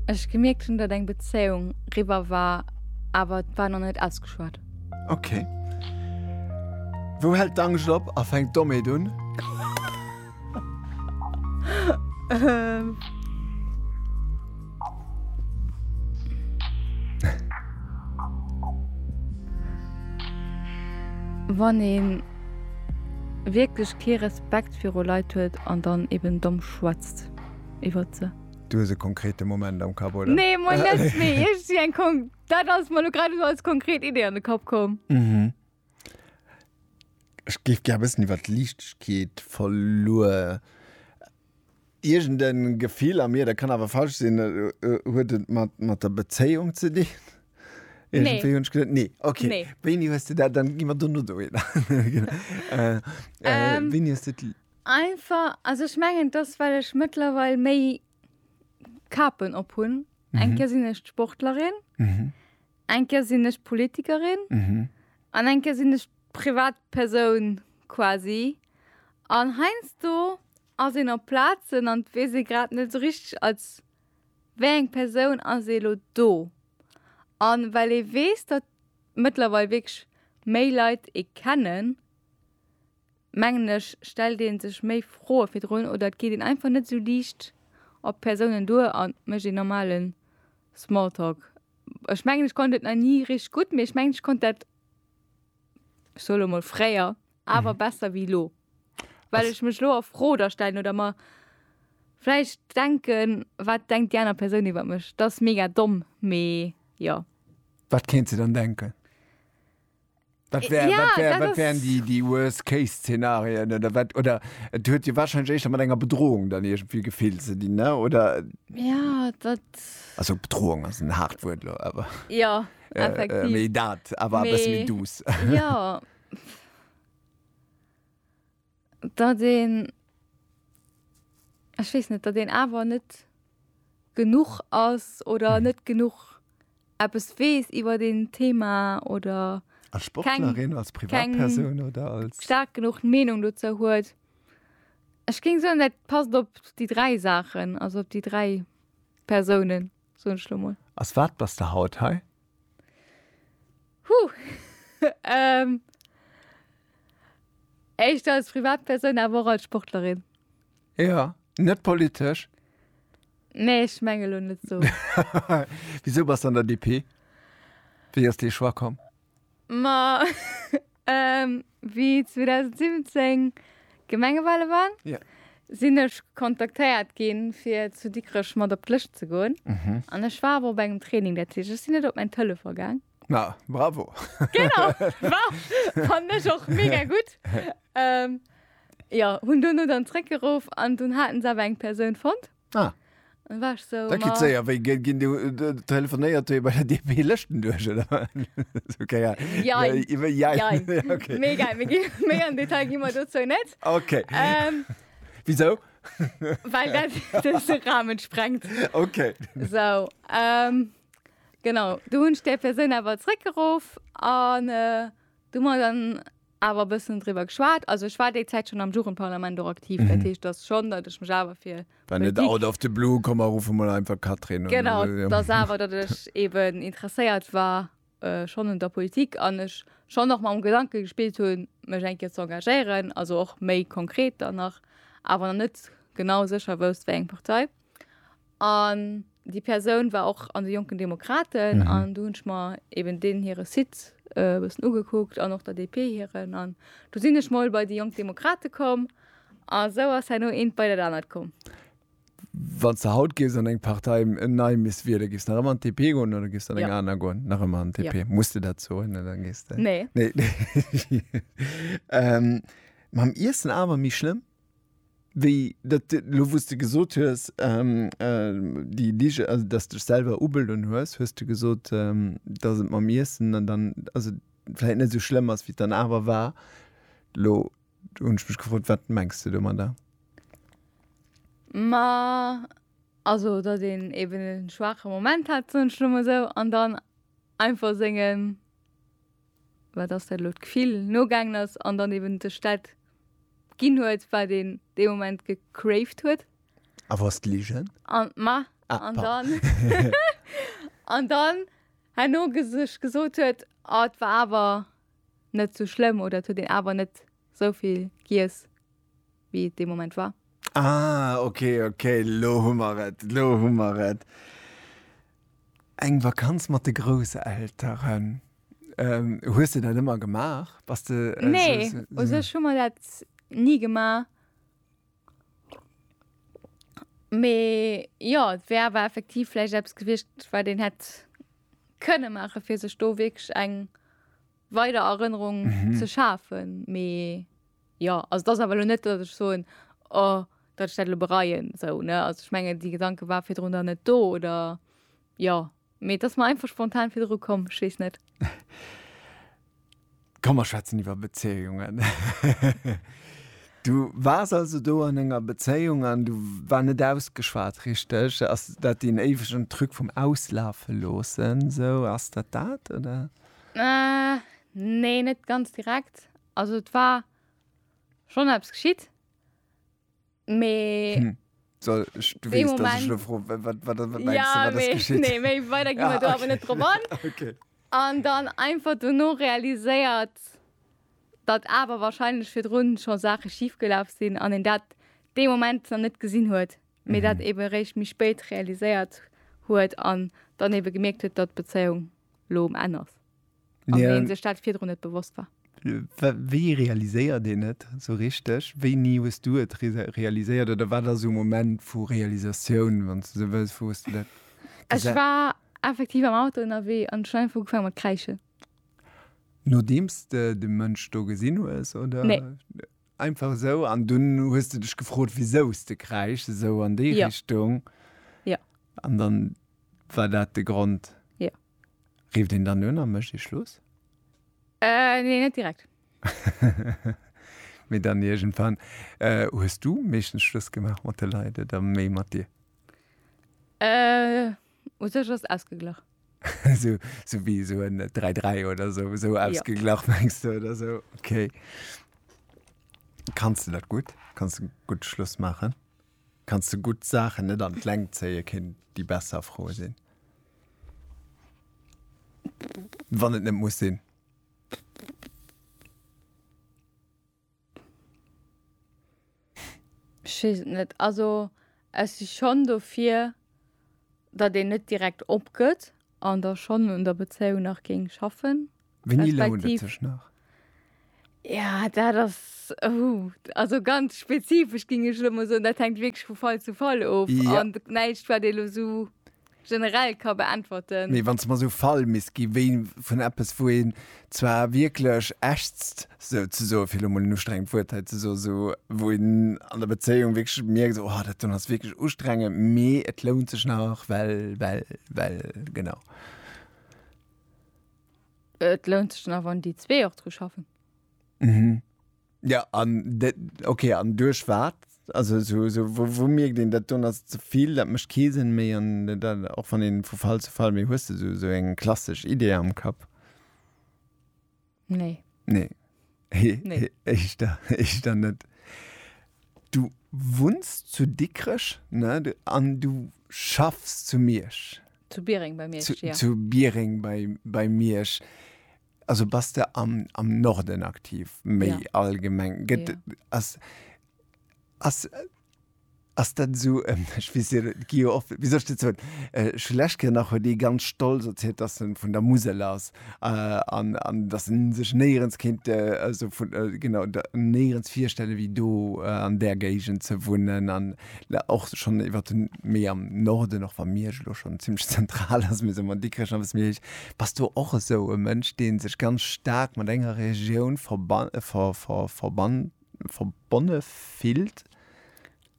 ech gemierkt hunn, datt eng Bezéiung riwwer war, awer et war nach net ausgeschwat. Ok. Wou hält d'Angscht op a fänkt d'Dommeet un? Wann ee wierklech kee Respekt viru Leit huet an dann eben domm schwätzt. geschwätzt iwwer ze. Du hues e konkrete Moment am Kapp oder? Nee moin net méi ech si eng Kon dat ass mer lo grad esou als konkret Idee an de Kapp komm. Mhm. Ech géif gär bëssen iwwer d'Liichtegkeet verluer. Iergend e Gefill a mir, dat kann awer falsch sinn, huet et mat mat der Bezéiung ze dinn? Nee. Iergendwéi hunn ech geduet, nee, okay. Nee. Wéini hues de dat dann, gi mer dono dohinner. Wéini hues de. Einfach, also ech mengen dass well ech mëttlerweil méi Kapen op hunn. Mhm. Eng Kéier sinn ech d'Sportlerin, mhm. eng Kéier sinn ech Politikerin mhm. an eng Kéier sinn ech Privatpersoun quasi. An heinz do ass een op Plazen an wees e grad net so richtig als wéi eng Persoun ass ee lo do. An well ee weess, datt mëttlerweil wierklech méi Leit ee kennen, mengen ech, stellt ee sech méi Froe virdrun oder et geet een einfach net esou liicht op d'Persounen duer a mécht een normale Smalltalk. Ech mengen, ech konnt et nach ni richteg gutt, mee ech mengen, ech konnt dat, ech soe lo mol fréier, awer besser wéi elo. Well ech mech elo a Fro da stellen oder mer vläicht denken, Wat denkt déi aner Persoun iwwer mech? Dat ass mega domm, mee jo. Wat kéint se dann denken? Wat wär, ja, wat wär, wat wären die, die Worst-Case-Szenarien oder wat, oder et huet jo wahrscheinlich echt mat enger Bedrohung dann irgendwie gefehlt ze dinn, ne? oder? Ja, dat. Also Bedrohung ass en hart Wuert lo, aber. Ja, äh, effektiv. Äh, méi dat, aber mais, e bëssen méi douce. Ja. datt een, ech weess net, datt een awer net genuch ass oder net genuch eppes weess iwwert een Thema oder als Sportlerin, als Privatperson oder als. Staark genuch Meenung dozou huet. Ech géing soen, dat passt op déi dräi Saachen, also op déi dräi Persounen. soen ech lo mol. Als wat bass de haut hei? Huh, ähm, éischter als Privatpersoun, awer och als Sportlerin. Ja, net politesch? Nee, ech menge lo net esou. Wisou bass de an der DP? Wéi ass dee Choix komm? Ma wéi 2017 Gemengewahle waren, sinn ech kontaktéiert ginn, fir zu Dikrech mat op d'Lëscht ze goen. An ech war awer op engem Training, dat heescht, ech sinn net op mäin Telefon gaang. Ma bravo! Genau! Ma fannen ech och mega gutt. Jo, hunn duerno dann zréckgeruff an dunn haten se awer eng Persoun fonnt. Ah. Dann war ech so. Dat geet séier. Wéi ginn déi, telefonéiert déi bei der DP Lëschten duerch oder wat? Esou Kéier. Jein. Jein. Okay. Méi gei, méi gi, méi am Detail gi mer dozou net. Okay. Ähm. Wisou? Well dat de Rahmen sprengt. Okay. Esou. Ähm. Genau. Du hunn ech där Persoun awer zréckgeruff an du mer dann. awer e bëssen driwwer geschwat. Also ech war déi Zäit schonn am Jugendparlament och aktiv, dat heescht dass schonn, datt ech mech awer fir War net Politik, out of the blue, komm mer ruffe mol einfach Catherine un. genau, dass awer datt ech eben interesséiert war schonn un der Politik an ech schonn och mam Gedanke gespillt hu mech eng Kéier ze engagéieren, also och méi konkret dann nach, awer nach net genau sécher wousst wéi eng Partei. An déi Persoun war och an de Jonken Demokraten an do hunn ech mer eben deenen hire Site e bëssen ugekuckt an och der DP hiren. An du sinn ech mol bei déi Jonk Demokrate komm a sou ass herno eent bei dat anert komm. Wann s de haut géifs an eng Partei nei misst wiele géifs nach ëmmer an d'DP goen oder géifs du an eng aner goen? Nach ëmmer an d'DP. Muss de dat soen an da gees de. Nee. Mam Iessen awer méi schlëmm? Wéi dat elo, wou s de gesot hues, déi Lige, also dass dech selwer ubeloen hues, hues de gesot, dass et mam Iessen an dann, also vläicht net esou schlëmm ass, wéi et dann awer war. Elo hunn ech mech gefrot, wat mengs de domadder? Ma also datt een eben e schwaache Moment hat, soen ech elo mol esou, an dann einfach sengen. wat ass dat elo, d'Gefill nogaangen ass an dann eben sech dat ginn huet, wat een dee Moment gecraved huet. A wou ass d'Ligen? An, ma, an dann, an dann herno sech gesot huet, ah, et war awer net esou schlëmm oder et huet een awer net sou vill giess wéi et dee Moment war. Ah ok ok, lo hu mer et, lo hu mer et. Eng Vakanz mat de Grousselteren. Hues de dat ëmmer gemaach? Bass de esou. Nee, u sech hu mer dat ni gemaach. Mee jo, et wär awer effektiv vläicht eppes gewiescht, wat een hätt kënne maachen, fir sech do wierklech eng weider Erënnerung ze schafen. Mee jo, also dat ass awer elo net, datt ech soen, oh, datt ech dat elo bereien, sou, ne? Also ech mengen, déi Gedanke war virdrun dann net do, oder jo. Mee et ass mer einfach spontan virdru komm, ech weess net. Komm, mer schwätzen iwwer Bezéiungen. Du waars also do an enger Bezéiung an du war net ausgeschwat, richteg? Ass dat deen éiwegen Truc vum Auslafe loossen, sou? Ass dat dat, oder? Äh, nee, net ganz direkt. Also et war schonn eppes geschitt, mee. Hm. So, ich, du weißt, dass ich froh, was, was, was meinst du, ja, was geschieht? Nee, nee, weiter gehen wir ja, da aber nicht drum an. okay. Und dann einfach danach realisiert, dass aber wahrscheinlich für drun schon Sachen schiefgelaufen sind an in dat dem Moment noch nicht gesehen hat, mir mhm. dat eben recht mich spät realisiert hat an dann eben gemerkt hat, dass Beziehung lo um Enn ass. An yeah. wéi sech dat virdrun net bewosst war. Wéi realiséiert dee net so richteg? Wéi nie hues du et realiséiert oder war der so Moment vu Realisatioun wann ze wës vu du dat? Ech war effektiv am Auto ënnerwee an Schwein vu gefang mat kräiche. Nodeems de de Mënsch do gesinn hues oder? Nee. Einfach esou an dunn hues de dech gefrot wisous de kräischs esou an déi Richtung. Jo. An dann war dat de Grond. Jo. Rifft een dann un a mécht ee Schluss? Nee net direkt. Mee dann iergendwann. Hues du meeschtens Schluss gemaach mat de Leit oder méi mat dir? U sech ass ausgeglach. Sou, sou wéi esou en 3-3 oder sou, esou Ja. ausgeglach mengs de oder sou? Okay. Kanns de dat gutt? Kanns de gutt Schluss maachen? Kanns de gutt Saachen net an d'Längt zéien, kéint déi besser Fro sinn? Wann et net muss sinn. Ech weess et net. Also ech si schonn dofir, datt een net direkt opgëtt an da schonn un der Bezéiung nach géing schaffen. Wéini lount et sech nach? Jo, dat ass, also ganz spezifesch géing ech elo mol soen. Dat hänkt wierklech vu Fall zu Fall of. An näischt wat ee elo esou. generell ka beäntwerten. Mee wann s de mer esou Fall misst gi wéi vun eppes, wou een zwar wierklech ächzt, sou ze soen, fir elo mol en ustrengend Wuert hei ze soen, sou wou een an der Bezéiung wierklech mierkt, sou, oh, dat do ass wierklech ustrengend, mee et lount sech nach, well, well, well. Genau. Et lount sech nach, wann déi zwee och dru schaffen. Mhm. Ja an de, okay an duerch wat? Also esou esou wou wou mierkt een dat don ass et zevill, dat mécht kee Sënn méi an dat och wann een vu Fall zu Fall, mee hues de esou esou eng klassesch Idee am Kapp? Nee. Nee. He Nee. he éischter éischter net. Du wunns zu Dikrech, ne, du an du schaffs zu Miersch? Zu Biereng bei Miersch, zu ja. zu Biereng bei bei Miersch. Also bass de am, am Norden aktiv, méi ja. allgemeng. Get, ja. as, as, as dat so, ähm, ich weiß, gi oft, wie soll ich so, äh, Schleschke nach huet die ganz stolz erzählt, dass er vun der Musel ass, äh, an, an dass en sech néierens kind, äh, also vun, äh, genau, néierens virstelle wéi do, äh, an der Géigend ze wunnen, an, La, och schon iwwer den méi am Norden, och wa Miersch elo schon ziemlech zentral ass, mee soe mer Dikrech ass e bëssen méi héich. Bass du och esou e Mënsch, dee sech ganz staark mat enger Regioun verban, ver, ver, verban, verbonne fillt?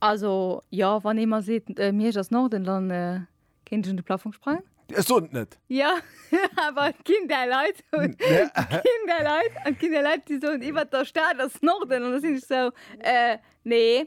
Also jo, wann ee mer seet, Miersch ass Norden, dann kéint ech un de Plafong sprangen. Ech soen et net! Jo, awer et ginn där Leit, et ginn där Leit, et ginn där Leit, déi soen iwwert der Stad ass Norden, an da sinn ech esou, nee.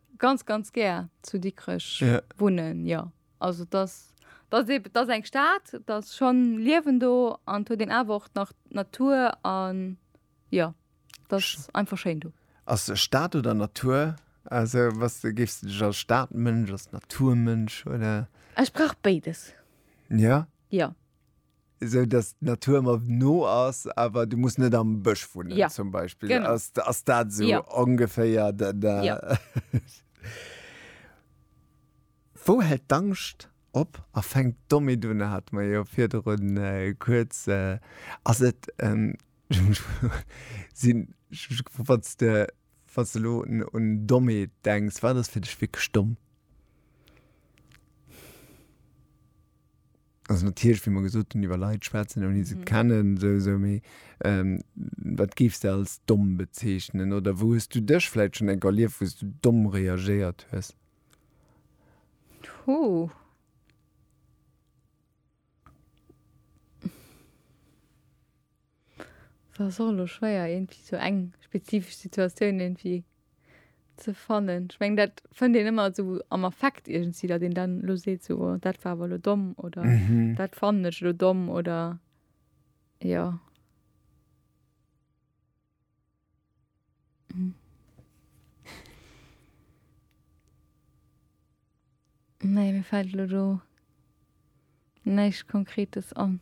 ganz ganz gär zu Dikrech yeah. wunnen ja also das das eben das eng Staat das schon liewen do an hue den awer nach Natur an ja das Sch einfach schein du as Staat oder Natur also was du gifst dich als Staatmënsch als Naturmënsch oder Ech brauch beides ja ja sou dass d'Natur mer no ass, awer du muss net am Bësch wunnen ja. zum Beispiel. Genau. Ass, ass dat sou ja. ongeféier? Da, da. Ja. Wou hält d'Angscht op a fänkt domme dunne hat mer jo virdrun äh, kurz äh, ass et ähm, sinn wat's de wat's de lo un domme denkst, war das fir dech wik stumm? Also natierlech, wéi mer gesot hunn, iwwer Leit schwätzen, ouni se kennen, sou, sou, mee wat géifs de als domm bezeechnen? Oder wou hues du dech vläicht schonn enk erlieft, wou s du domm reagéiert hues? Puh. Et ass och elo schwéier iergendwéi sou eng spezifesch Situatioun iergendwéi ze fannen. Ech meng dat fënnt een ëmmer esou am Affekt iergendwéi, datt een dann elo seet sou oh dat war awer elo domm oder dat fannen ech elo domm oder jo. Nee, mir fällt lo do näischt Konkretes an.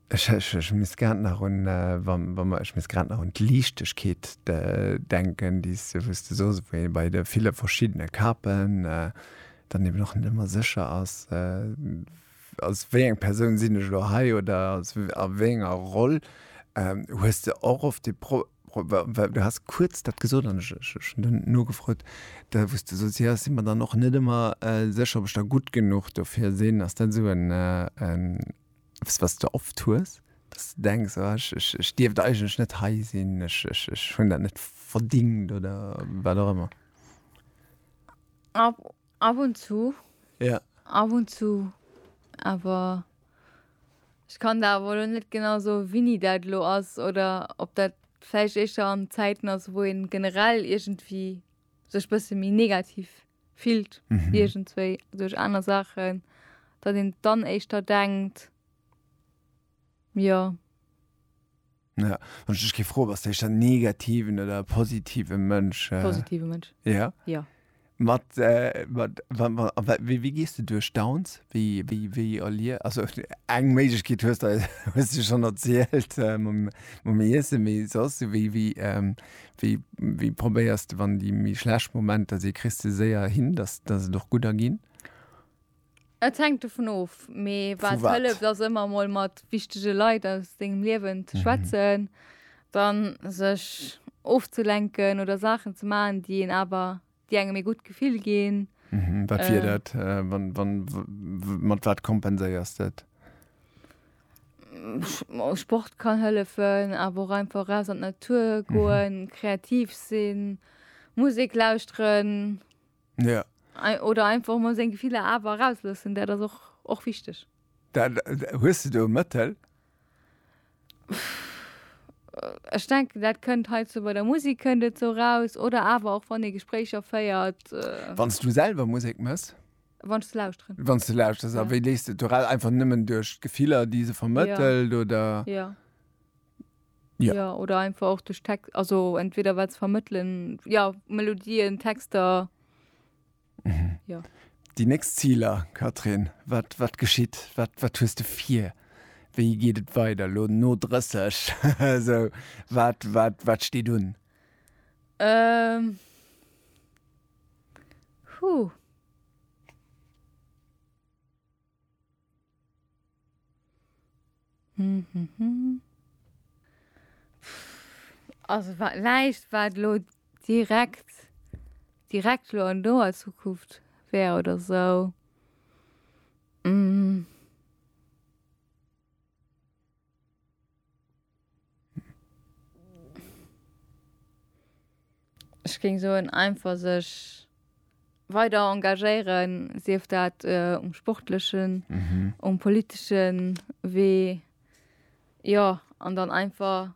Ech, ech, ech misst grad nach un, äh, wa, wa mer, ech misst grad nach un d'Liichtegkeet de, denken, déi s de, wou s de soos, wou ee bei de ville verschiddene Kapen äh, dann eben och net ëmmer sécher ass, äh, als wéi eng Persoun sinn ech elo hei oder als a wéi enger Roll ähm hues de och oft de Pro Pro well du has kuerz dat gesot an ech ech ech hunn dann nogefrot, da wou s de soss, jo ech si mer dann och net ëmmer sécher ob ech da gutt genuch dofir sinn. Ass dat esou en en eppes wat s de oft hues, dass de denks, oh ech ech ech dierft eigentlech net hei sinn, ech ech ech hunn dat net verdingt oder wat och ëmmer? Ab und zu. Ja. Ab und zu. Awer ech kann der awer elo net genau soen, wéini dat elo ass oder ob dat vläicht éischter an Zäiten ass, wou ee generell iergendwéi sech bësse méi negativ fillt, iergendswéi duerch aner Saachen, datt een dann éischter denkt, jo. Ja, wann ich dich ge froh was dich dann negativen oder positive Mënsch äh, positive Mënsch ja ja mat, äh, mat wa, wa, wa, wie, wie gehst du durch Downs wie wie wie erlier also eng Mädchen geht hörst da hast du schon erzählt äh, mam, mam Essen wie sos du wie wie ähm, wie wie probéierst wann die mi schlecht Momenter se christ du séier hin dass dass es doch guter ginn Et hängt dovun of, mee Vu wat wat? hëlleft ass ëmmer emol mat wichtege Leit aus dengem Liewen ze schwätzen, dann sech ofzelenken oder Saachen ze maachen, déi een awer, déi engem ee gutt Gefill ginn. Wat wier dat? Wann, wann, w, mat wat kompenséiers de et? Sport kann hëllefen, awer och einfach raus an d'Natur goen, kreativ sinn, Musek lauschteren. Ja. Oder einfach mol seng Gefiller awer erausloossen, dat ass och och wichteg. Dat, hues de do e Mëttel? Ech denken dat kënnt hei zou bei der Musek kënnt et zou raus oder awer och wann ee Gespréicher féiert. Wann s du selwer Musek mëss? Wann ech se lauschteren. Wann s de lauschters, a wéi léis de et do raus? Einfach nëmmen duerch d'Gefiller déi se vermëttelt oder? Jo. Ja. Ja, oder einfach och duerch Text, also entweder wat ze vermëttelen, ja, Melodien, Texter. Ja. Déi nächst Ziler, Catherine, wat, wat geschitt? Wat, wat hues de vir? Wéi geet et weider lo no 30? so, wat, wat, wat steet un? Ähm. Huh. Also wat näischt wat lo direkt direkt lo an doer Zukunft wär oder sou. Ech géing soen einfach sech weider engagéieren, sief dat äh, um sportlechen, mhm. um politeschen Wee ja an dann einfach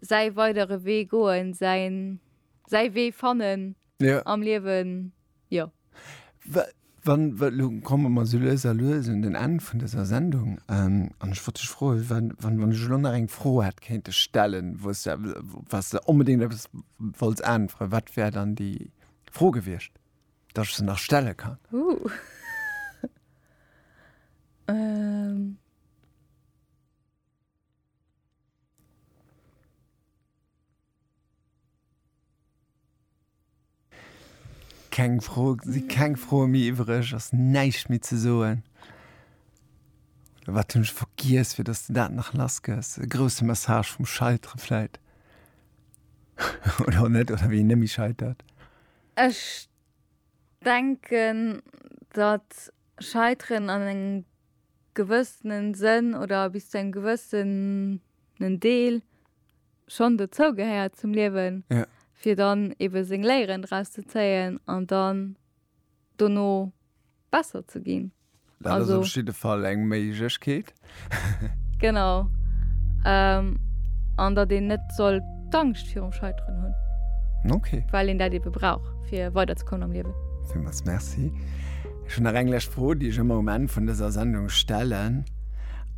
säi weidere Wee goen, säin säi Wee fannen ja. am Liewen. Jo. Wann, elo komme mer esou lues a lues un den Enn vun dëser Sendung, an ech wollt dech froe wann, wann, wann ech elo nach eng Fro hätt kéinte stellen, wou s de, op wat s de onbedéngt eppes wollts äntweren, wat wär dann déi Fro gewiescht, datt ech se nach stelle kann? Keng Fro, si keng Froe méi iwwereg, ass näischt méi ze soen. Oder wat hunn ech vergiess, fir datt s de dat nach lass gëss? E grousse Message vum Scheitere vläit? Oder och net, oder wéi een net méi scheitert. Ech denken, datt Scheiteren an engem. gewëssenen Sënn oder bis zu engem gewëssenen Deel schonn dozou gehéiert zum Liewen, ja. fir dann ebe seng Léieren draus ze zéien an dann dono besser ze ginn. Dat also, ass op jidde Fall eng Méiglechkeet. genau. Ähm, an datt een net soll d'Angscht virum Scheiteren hunn. Okay. Well een dat ebe brauch, fir weiderzekommen am Liewen. Villmools Merci. Ech hunn nach eng lescht Fro, déi ech ëmmer um Enn vun dëser Sendung stellen.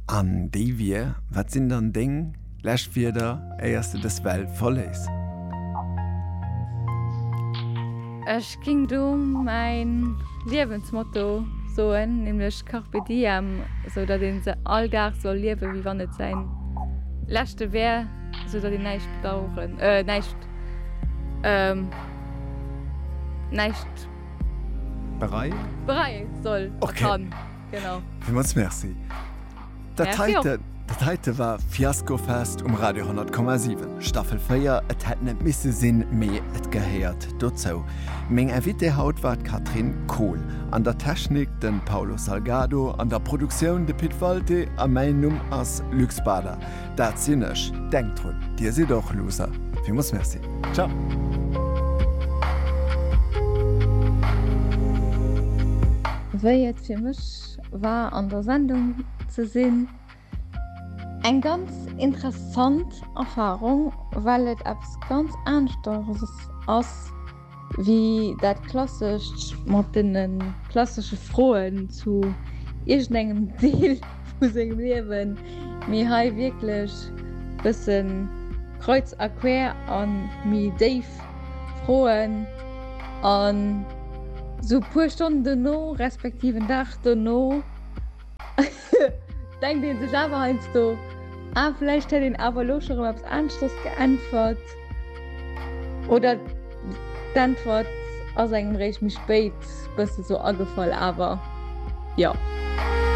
An déi wier, Wat sinn dann deng lescht Wierder, éier s de dës Welt verléiss? Ech géing do mäin Liewensmotto soen, nämlech Carpe diem, esou datt ee se all Dag soll liewen, wéi wann et säin leschte wär, esou datt een näischt bedaueren, näischt, näischt. Berei? Berei soll a kann. Genau. Villmools Merci. Dat Merci och. heiten, dat heite war Fiasco Fest um Radio 10,7, Staffel 4. Et hätt net misse sinn, mee et gehéiert dozou. Meng Invitée haut war d'Catherine Kohl, an der Technik de Paulo Salgado, an der Produktioun de Pit Walté a mäin Numm ass Luc Bader. Dat sinn ech. Denkt drun, Dir sidd och Loser. Villmools Merci. Ciao. Wéi et fir mech war an der Sendung ze sinn, eng ganz interessant Erfahrung, well et eppes ganz aaneschters ass, Wéi dat klassescht mat deene klassesche Froen zu iergendengem Deel vu sengem Liewen, mee hei wierklech bësse kreuz a quer a méi déif Froen. An esou e puer Stonnen dono, respektiv en Dag dono, Denkt een sech awer heiansdo, ah, vläicht hätt een awer elo scho rëm eppes aneschters geäntwert oder d'Äntwert ass engem réischt méi spéit bësse sou agefall, awer jo.